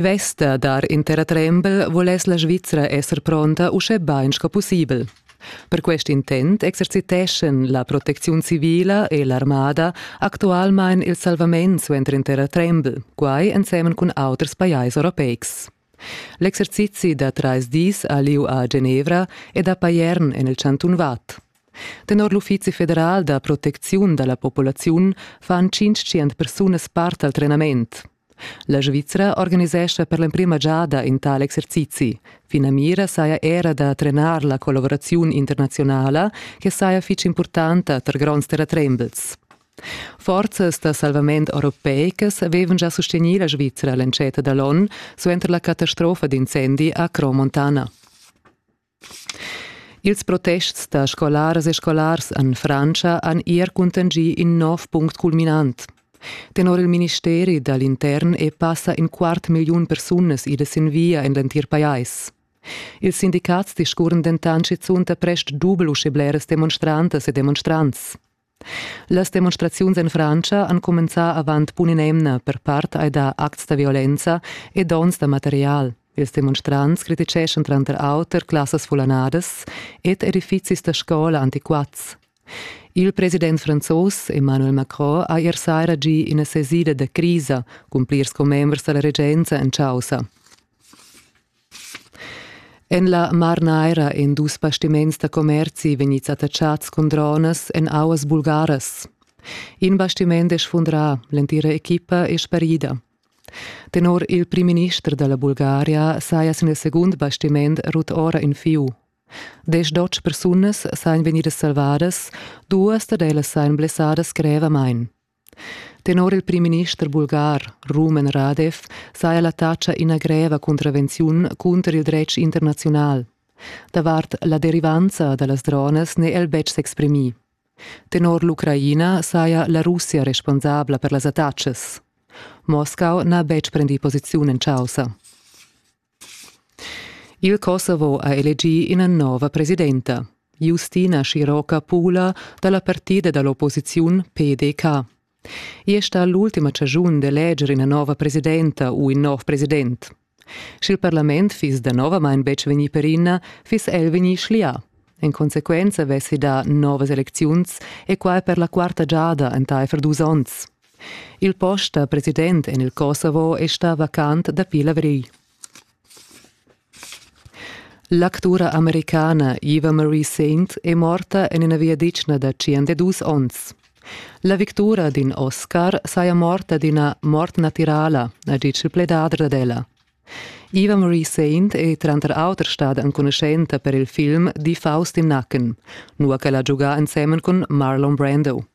Vesta dar in terratrembel voless la Svizra esser pronta uschè bain sco pussibel. Per quest intent exerciteschan la protecziun civila e l'armada actualmain il salvament suenter in terratrembel, quai ensemen cun auters pajais europeics. L'exercizi da trais dis a lieu a Genevra ed a Payern en il chantun Watt. Tenor l'Uffizi federal da protecziun da la populaziun fan 500 persunas part al trenament. La Svizra organisescha per l'emprima giada in tal exercizi. Finamira saja era da trenar la collaboraziun internazionala che saja fitg impurtanta tar gronds terratrembels. Forzas da salvament europeicas avevan già sustegnì la Svizra l'entscheta da l'onn suenter la catastrofa d'incendi a Cromontana. Ils protests da scolaras e scolars en Frantscha han ier cuntanschì in nov punct culminant. Tenor il ministeri da l'intern e passa in quart milliun persunas idas sin via en l'entir pajais. Ils sindicats discurren dentant schizunt da prest dubel usche bleras demonstrantas e demonstrants. Las demonstraziuns en Frantscha han cumenzà avant bun in'emna per part ai dà acts da violenza e dons da material. Ils demonstrants criticeschan tranter auter classas fullanadas ed edifizis da scola antiquats. Il president franzos Emmanuel Macron ha ier saira gì ina sesida da crisa cun plirs commembers da la regenza en chaussa. En la Mar Naira èn dus bastiments da commerzi vegnids attachats cun dronas en auas bulgaras. In bastiment è sfundrà, l'entira equipa è sparida. Tenor il primminister da la Bulgaria saja sin il segund bastiment rut ora in fieu. Desch persunas sajan vegnidas salvadas, duas dad ellas sajan blessadas grevamain. Tenor il primminister bulgar Rumen Radev saja la taxa ina greva cuntravenziun cunter il dretg internaziunal. Davart la derivanza da las dronas n'è el betg s'exprimì. Tenor l'Ucraina saja la Russia responsabla per las attacas. Moscau n'ha betg prendì posiziun en chaussa. Il Kosovo ha elegì ina nova presidenta, Justina Schiroka Pula da la partida da l'opposiziun PDK. I è stà l'ultima chaschun d'eleger ina nova presidenta u in nov president. Sch'il parlament fiss danovamain betg vegnì perina, fiss el vegnì schlià. En consequenza vessi dà novas elecziuns e quai per la quarta giada entaifer dus onns. Il post da president en il Kosovo è stà vacant dapi l'avrigl. L'actura americana Eva Marie Saint è morta en ina viaditschna da 52 onns. La victura d'in Oscar saja morta d'ina mort natirala, ha ditg il pledadra ad ella. Eva Marie Saint è tranter auter stada enconuschenta per il film Die Faust im Nacken, nua ch'ella ha giugà ensemen cun Marlon Brando.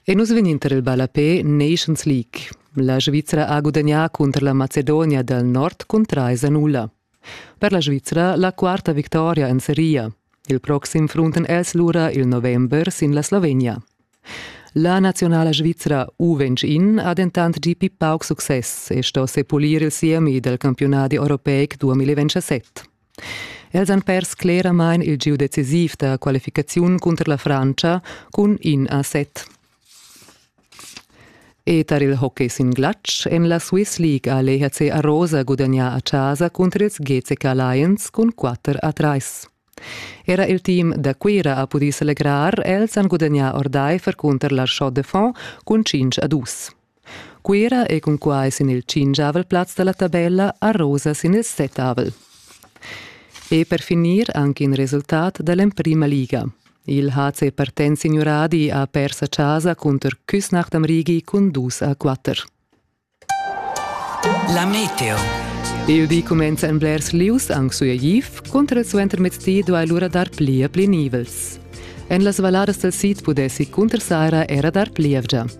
E nus vegnin tar il ballapé Nations League. La Svizra ha gudagnà cunter la Macedonia dal nord cun trais a nulla. Per la Svizra la quarta victoria en seria. Il proxim frunten els lura il november sin la Slovenia. La nazionala svizra U21 ha dentant gì pli pauc success e sto sepulir il siemi del campionadi europeic 2017. Els han pers cleramain il giu decisiv da qualificaziun cunter la Francia cun in a set. E tar il hockey sin glatsch en la Swiss League ha l'EHC Arosa gudagnà a chasa cunter ils GCK Lions cun 4 a 3. Era il team da Cuira ha pudì selegrar, els han gudagnà ordaifer cunter l'Archot de Font cun 5 a 2. Cuira ei cunquai sin il tschingiavel plaz dalla tabella a rosa sin il settavel. E per finir anche in resultat dall'emprima liga. Il HC Partenz Signuradi ha pers a casa cunter Küsnacht am Rigi cun dus a quatter. La Meteo. Il di cumenza en blers lius anc sueigiv, contra il suentermezdi duai lura dar pli e pli nivels. En las valladas del sid pudessi cunter Saira era dar plievgia.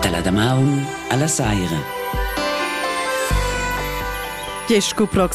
Dalla damaun alla saira. Diesch sco prox